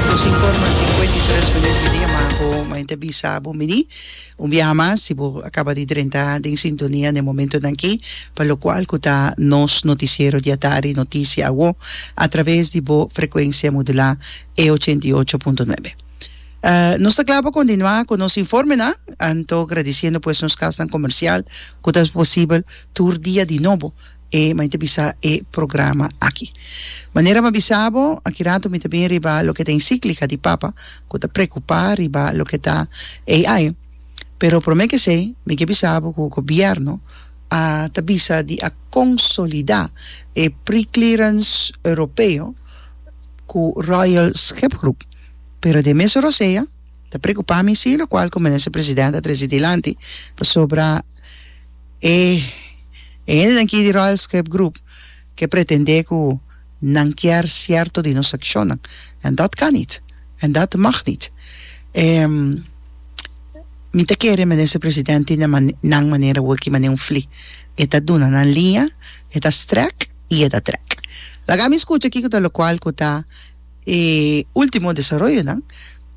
Nos informa sinkuenta i tres minuut di dia mas ago mañana ta bisa bo mini un biaha mas si bo a kaba di drenta den sintonia na e momentonan aki pa lokual ku ta nos notisiero di atardi Notisia Awo a traves di bo frekuensia modulá e ochenta i ocho punto nuebe. Nos ta kla pa kontinuá ku nos informenan anto gradisiendo pues nos kasnan komersial ku ta haci posibel tur dia di nobo E mi ta bisa e programa aki. Manera mi bisa bo, aki rato mi ta bin riba loke ta encíclica di Papa cu ta preocupa riba loke ta AI. Pero prome kesey mi ke bisa bo cu Gobierno a ta bisa di a consolida e preclearance Europeo cu Royal Schipgroep. Pero den mes Rosea ta preocupa mi si, locual cu Minister President a trece dilanti pasobra. E hende aki di Royal Script Group ke pretendé ku nan kier sierto di nos akshonnan, en dat kan nit, en dat mag nit. E mi ta kere Minister President tin den nan manera wiki manera un fli, e ta duna nan liña, e ta strek i e ta trek. Laga mi skucha kiko ta lokual ku ta e ultimo desaroyonan,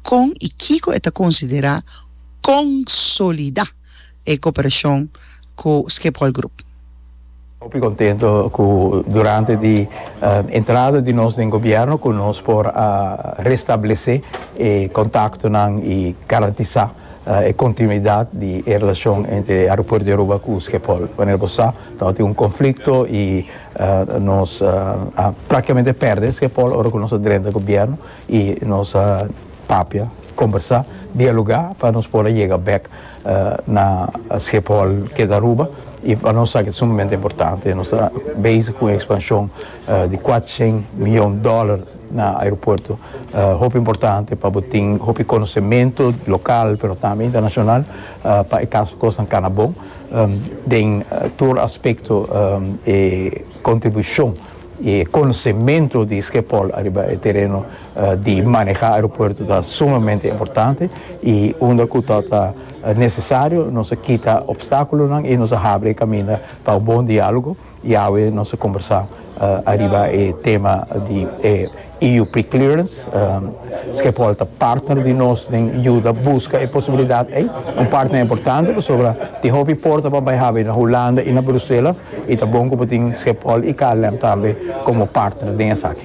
kon i kiko e ta konsiderá konsolidá. e cooperacion cu Schiphol Group. Hopi contento cu durante di entrada di nos den gobierno cu nos por a restablece e contactonan y garantisa e continuidad di e relacion entre Aeropuerto di Aruba cu Schiphol. Manera bo sa ta hopi un conflicto y nos a practicamente perde Schiphol ora cu nos a drenta gobierno y nos a. Papia, kombersá, dialogá pa nos por a yega bèk na Schiphol ke ta Aruba i pa nos aki ta sumamente importante. Nos ta bezig ku un ekspanshon di kuater shen miyon dòler na aeropuerto. Hopi importante pa bo tin hopi konosementu lokal pero tambe internashonal pa e kaso kosnan kana bon den tur aspekto e kontribushon i e konosementu di Schiphol ariba e tereno. Di maneha aeropuerto ta sumamente importante y unda cu ta ta necesario nos a kita obstaculonan y nos a habri e caminda pa un bon dialogo y awe nos a combersa ariba e tema di e EU preclearance. Schiphol ta partner di nos den yuda busca e posibilidad ey, un partner importante pasobra tin hopi porta pa bay habi na Hulanda y na Bruselas y ta bon cu bo tin Schiphol y KLM tambe como partner den esaki.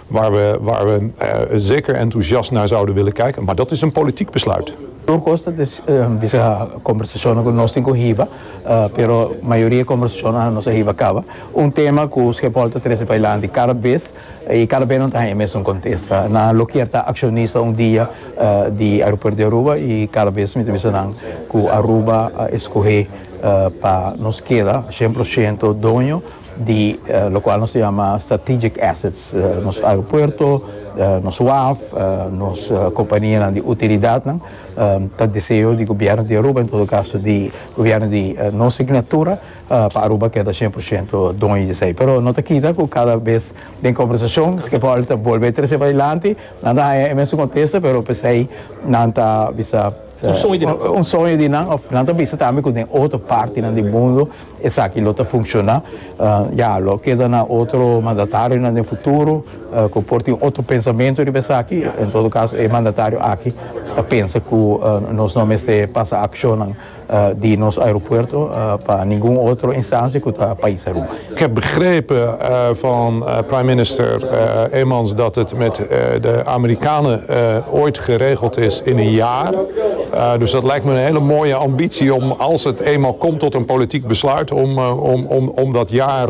Waar we, waar we zeker enthousiast naar zouden willen kijken, maar dat is een politiek besluit. Tur koste te bisa kombersacionnan ku nos tin ku hiba, pero mayoria kombersacionnan nos a hiba kaba. Un tema ku Schiphol ta trese pailanti kada bes, i kada bes nan ta haña e mesun kontesta. Nan a lokeer ta akshonista un dia di Aeropuert di Aruba, i kada bes mi ta bisa nan ku Aruba a eskohé pa nos keda shen prosento doño, di lokual nos ta yama strategic assets, nos aeropuerto, nos waf, nos kompanianan di utilidatnan, ta deseo di Gobièrnu di Aruba, en todo kaso di Gobièrnu di nos signatura, pa Aruba keda shen por shento doño di esei. Pero no ta kita ku kada bes den kombersashon Schiphol ta bolbe trese pa dilanti, nan ta haña e mesun kontesta, pero p'esei nan ta bisa, un soño di nan, òf nan ta bisa tambe ku den otro partinan di mundu, Esaki lo ta funciona ya, lo keda na otro mandatariunan den futuro cu por tin otro pensamento riba esaki. En todo caso e mandatario aki ta pensa cu nos no mester pasa accionnan di nos aeropuerto pa ningun otro instancia cu ta pais Aruba. Ik heb begrepen van Prime Minister Emmons dat het met de Amerikanen ooit geregeld is in een jaar. Dus dat lijkt me een hele mooie ambitie om als het eenmaal komt tot een politiek besluit om dat jaar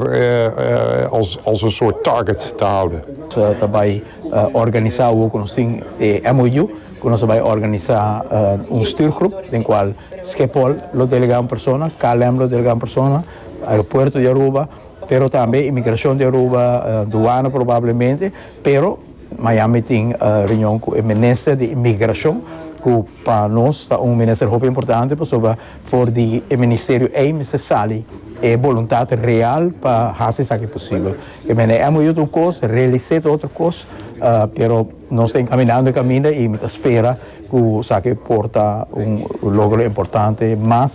als een soort target te houden. Nos ta bay organisa awo cu nos tin e MOU cu nos a bay organisa un stuurgroep den cual Schiphol lo delega un persona, KLM lo delega un persona, Aeropuerto di Aruba, pero tambe Inmigracion di Aruba, Douane probablemente, pero. Miami tin reunion cu e minister di inmigracion cu pa nos ta un minister hopi importante pasobra for di e ministerio ey mester sali e boluntad real pa haci esaki posibel. E mene amo yut un cos, realisé ta otro cos pero nos ta encaminando e caminda y mi ta spera cu esaki por ta un logro importante mas